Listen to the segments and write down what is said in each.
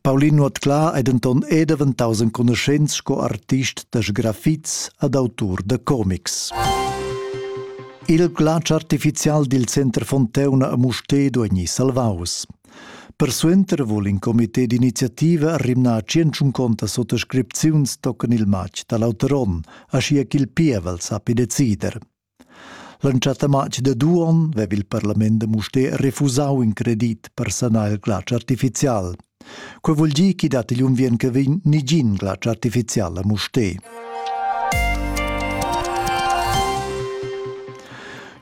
Paulin Nuotclà è denton è daventaus enconuschents sco artist da sgrafits ad autur da comics. Il glatsch artificial dil Center Fonteuna a Mustér duegni salvaus. Persuenter vul in comité d'iniziativa rimnar tschentschunconta sottoscripziuns tocken il matg dall'auter onn, aschia ch'il pievel sappi decider. L'entschatta matg da Duon veva il parlament da Mustér refusau in credit per sanar il glatsch artificial. Quei vul dir ch'i dat igl unviern che vegn nigin glatsch artificial a Mustér.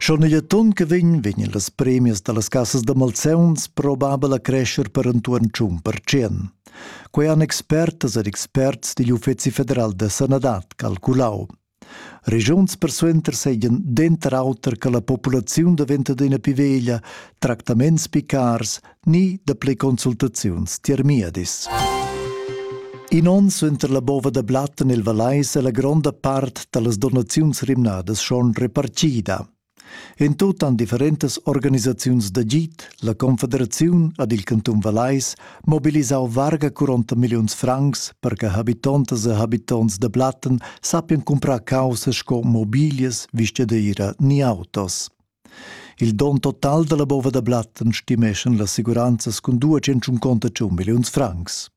Schon igl ton che vegn vegn las premias dallas cassas da malzeuns probabel a crescer per entuorn tschun per cent. Quei han expertas ed experts digl Uffeci federal da sanadad calculau. Regiuns persuenter seigien denter auter che la populaziun daventa adina pli veglia, tractaments pli cars ni dapli consultaziuns tiermiedis. In onn suenter la bova da blat en il Valais è la gronda part dallas donaziuns rimnadas schon repartida. En tut han differentas organisaziuns d'agid, la Confederaziun ed il cantun Vallais mobilisau varga 40 milliuns francs per che habitontas e habitonts da Blatten sappien cumprar caussa sco mobilias, vistadeira ni autos. Il don total dalla bova da Blatten stimeschan las assiguranzas cun 201 milliuns francs.